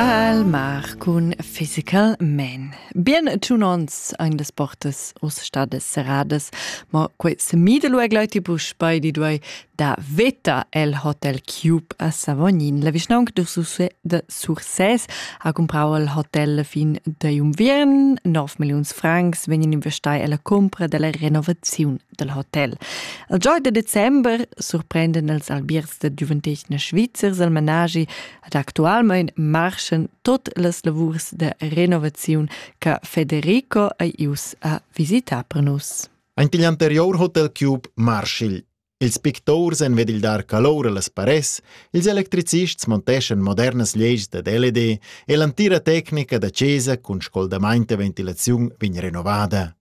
Al mar cun Physical Man. Bien tunons ein das portas os stadas serradas, ma quei semidelo e gleitibus bei di duei da veta el Hotel Cube a Savognin. La vischnaunca de Sursès ha comprau il hotel fin da unviern. 9 milliuns francs vegnan investai alla cumpra dalla renovaziun dal hotel. Il gieu da december surprenden els albiers da giuventetgna svizzers al managi ad actualmain marschen tot las lavurs da renovaziun che Federico ei ius a visitar per nus. Ein pigl anterior hotel Cube Marshall. Ils pictors en ved il dar calor a las pares, ils electricists monteschan modernas leis da LED e l'antira tecnica da chesa cun scoldamaint e ventilaziun vegn renovada.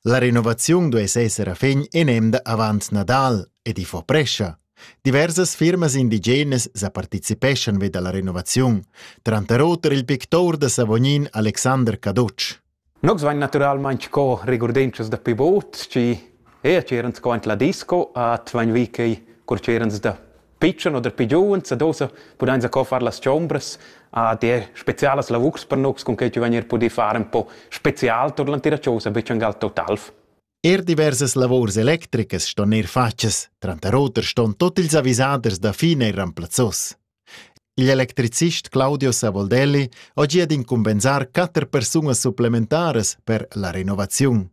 La renovaziun duess esser a fin in emda avant Nadal ed i fa prescha. Diversas firmas indigenas sa participeschan vi dalla renovaziun, tranter oter il pictur da Savognin Alexander Cadotsch. Nus vain naturalmaing co regurdentschas da pivot, chi eir c'erans co ant la disco, at vain vi quei cur c'erans da pitschen oder pi giuvens ad ossa pudain sco far las chombras a dir spezialas lavurs per nus cun quei chi vegnir pudì far un po spezial tur l'antira chosa be ün gal total. Er diversas lavurs electricas ston ir fatgas, tranter oter ston tot ils avisaders da fin er remplazzos. L'electricist Claudio Savoldelli ha gia d'incumbensar quatter persunas supplementaras per la renovaziun.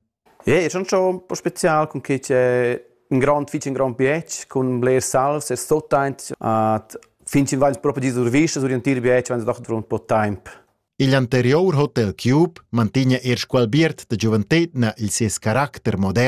Ja, è schon schon un po' spezial cun che c'è un grand fich un grand bietg cun bler salz e stot aint at fin chin vains propi disurvisce sur l'entir bietg vains doch durant un po' temp. Il anterior Hotel Cube mantigna eir qualbiert da giuventetna il sies caracter modern